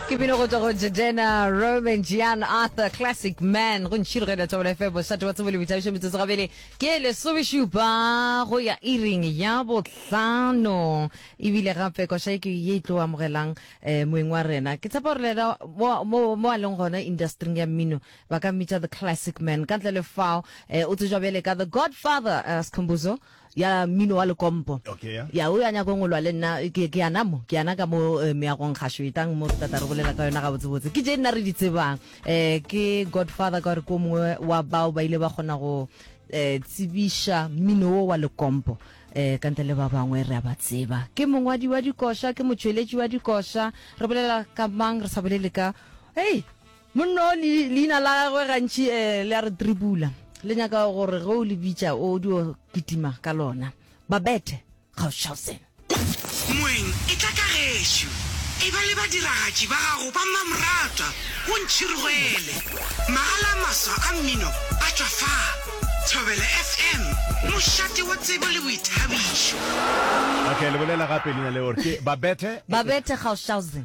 ke bino go tswa go jejena roman jean arthur classic man go ntšhirogela tšabola fm mošate wa tsebo le boithabišo metsotso gabele ke lesomešupa go ya iring ya bohlano ebile gape koša e ke ye e tlo amogelang um moeng wa rena ke tshepa gore lena mo- mo mo a leng gona industring ya mmino ba ka mmitša the classic man ka ntle le fao um o tsejwa bjale ka the godfather uh, scombuzo ya mmino wa lekompo ya o ya nyako ngolwa le nna ke ke yana mo ke yana ka mo eh, meagong gašo etang mo re tata re bolela ka yona ga botse botse ke je nna re di tsebang eh ke godfather ka gore ko mongwe wa bao ba ile ba kgona go eh tsibiša mmino wo wa lekompo eh ka ntle le ba bangwe re a ba tseba ke mongwadi wa dikoša ke motšweletši wa dikoša re bolela ka mang re sa bolele ka hey Monna o, le, leina la gagwe gantši eh, le a re tribula. Le nyaka gore ge o le bitša o dio kitima ka lona. Babette Gauchausen. Moeng, etla ka gešo. Eba le badiragatši ba gago ba mmamoratwa, o ntšhirgwele. Magala a maswa a mmino a tšwa fa. Thobela FM, mošate wa tsebo le boithabišo. Okay, le bolela gape leina leo, ke Babette. Babette Gauchausen.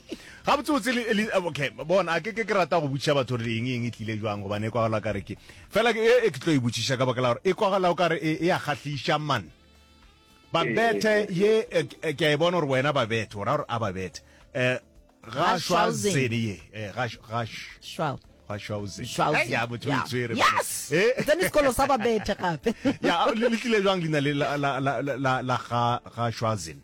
Gabotse botse le le okay bona a ke ke ke rata go botšiša batho re eng eng e tlile jwang gobane e kwagala ka re ke fela ke e ke tlo e botšiša ka bakela gore e kwagala o ka re e, e a kgahliša man ba bethe ye e, e, ke a e bona gore wena ba bethe o ra gore a ba bethe eh ga shwa zene ye eh ga ga shwa ga shwa zene ya motho o tswere yes eh then it's called saba bethe gape ya le tlile jwang lina la la la la ga ga shwa zene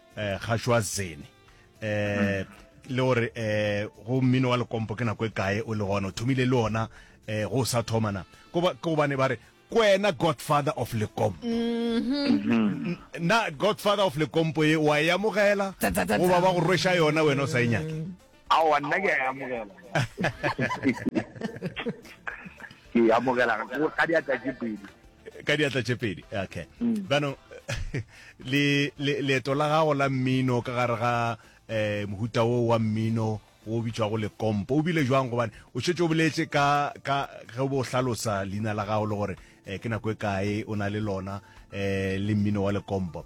eh, gašwa zene eh le gore eh go mmino wa lekompo ke nako e kae o le gona o thomile le ona eh go sa thoma na ko ba ko bane ba re kwena godfather of lekompo mm-hmm. na godfather of lekompo e wa e amogela goba ba go rwesha yona wena o sa e nyake Aowa, nna ke a e amogela. Ke e amogela ka diatla tše pedi. Ka diatla tše pedi, okay. Mm. Bano, le, le, leeto la gago la mmino ka gare ga eh, mohuta wo wa mmino o bitšwago lekompo o bile jwang gobane o šetse o boletse ka ka ge bo hlalosa leina la gago le gore eh, ke nako e kae o na le lona eh, le mmino wa lekompo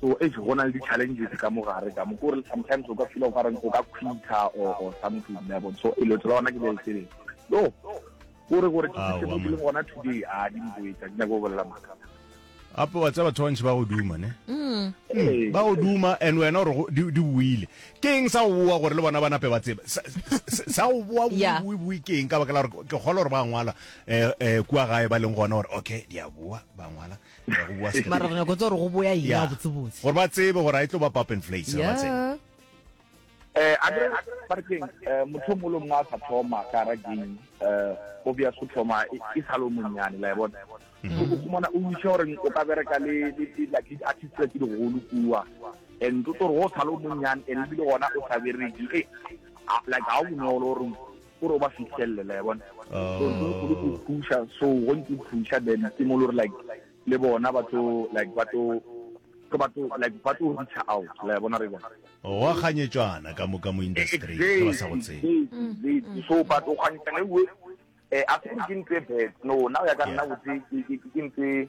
So eish go na le di challenges ka mo gare ka mo ke gore sometimes o ka feel o ka reng o ka quita or or something ya bon so e lo tsela ona ke le tsele no gore gore ke se mo ke le gona today a di mboetsa ke go bolela maka ape wa tseba batho ba ntši ba go duma ne mm. Hmm. ba go duma and wena gore di buile ke eng sa go boa gore le bona ba nape ba tseba sa go boa bue ke eng ka baka la gore ke kgolo gore ba ngwala um eh, eh, kua gae ba leng gona gore okay di a boa ba ngwala mara re nyako tsa gore go boya eng ya botsebotse gore ba tsebe gore a e tlo ba pop and flakes ba tsebe eh a re ba re keng eh, motho mo lo mwa sa thoma ka ra ding eh o bya go thoma e, e sa lo monyane la e bona mm-hmm. o khumana o ntse gore o ka bereka le le la di artist tse di go lu kuwa and to toro o sa lo monyane e le le gona o sa bereki e like ha o no lo reng O re o ba fihlelle, la e bona. So, ntho e kgolo ke go thuša, so go ntse o thuša, then ke mo le gore like le bona ba tlo, like ba tlo, ke ba tlo, like ba tlo reacher out, la e bona, re bona. Gwa kganyetšwana ka moka mo industry-ing, ge ba sa go tsebe. Exactly, exactly. So, but o kganyetšana ewe, eh, a se gore ke ntho e bad, no, nna go ya ka nna, botse, ke, ke, ke ntho e,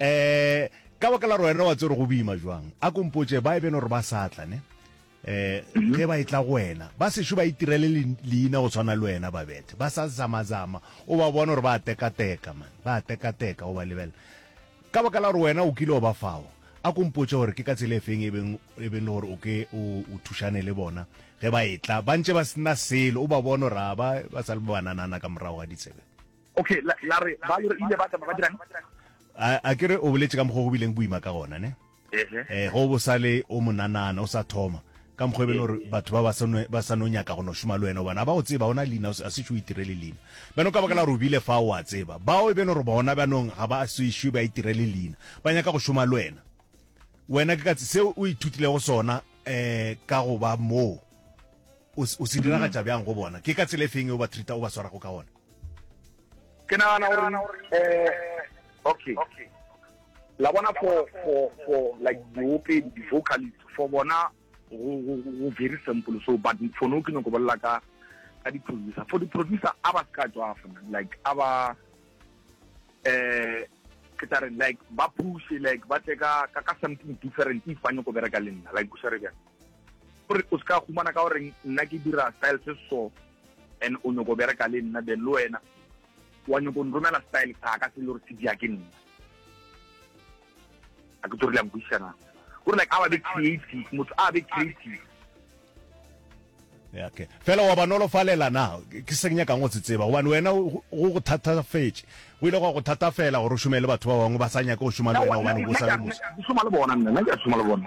um ka baka la gore wena wa tsere go boima jwang a kompotse ba e beno gore ba sa tla ne um ge ba e tla go wena ba sešo ba itirele le- leina go tshwana le wena ba bethe ba sa zamazama o ba bona gore ba tekateka man ba tekateka o ba lebela ka baka la gore wena o kile o ba fao a kompotse gore ke ka tsela e feng e beng e beng le gore o ke o o thušane le bona ge ba e tla ba ntše ba sena selo o ba bona gore a ba ba sa le bananana ka morago ga ditsebe Okay, la, la re, ba re ile ba tsamaya ba dirang? A, a ke re o boletše ka mokgwa go bileng boima ka gona, ne? Ehe. Eh, go bo sa le o monanana, o sa thoma. Ka mokgwa e bele gore batho ba ba sa no, ba sa no nyaka go no šoma le wena, gobane ga ba go tseba, ona leina, a se šo itirele leina. Bjano ka baka la gore o bile fa, o a tseba. Bao e bele gore bona bjanong ga ba se šwe ba itirele leina, ba nyaka go šoma le wena. Wena ke ka tse, seo o ithutilego sona, eh, ka go ba moo, o, o se diragatša bjang go bona? Ke ka tsela e feng e o ba treat-a, o ba swarago ka gona? ke nagana gore um eh, okay la bona for for for like diopedi di-vocalist for bona go very simple so but for no ke nyako bolela ka ka di-producer for di-producer a ba se ka tswafana like a ba um ke tla reng like ba pushe like ba tle ka ka something different if ba nyako bereka le nna like o swere bjang gore o se ka humana ka goreng nna ke dira style se so And o nyoko bereka le nna then le wena wa nyoko nromela style sa ka se le gore se dia ke nna a ke tsorile ankwisana gore like a be creative motho a be creative ya ke fela wa banolo falela na ke se nya kang o se tseba gobane wena go go thatafetse go ile go go thatafela gore o shumele batho ba bangwe ba sa nyaka go shuma le wena gobane o sa le motho ke shuma le bona nna ke shuma le bona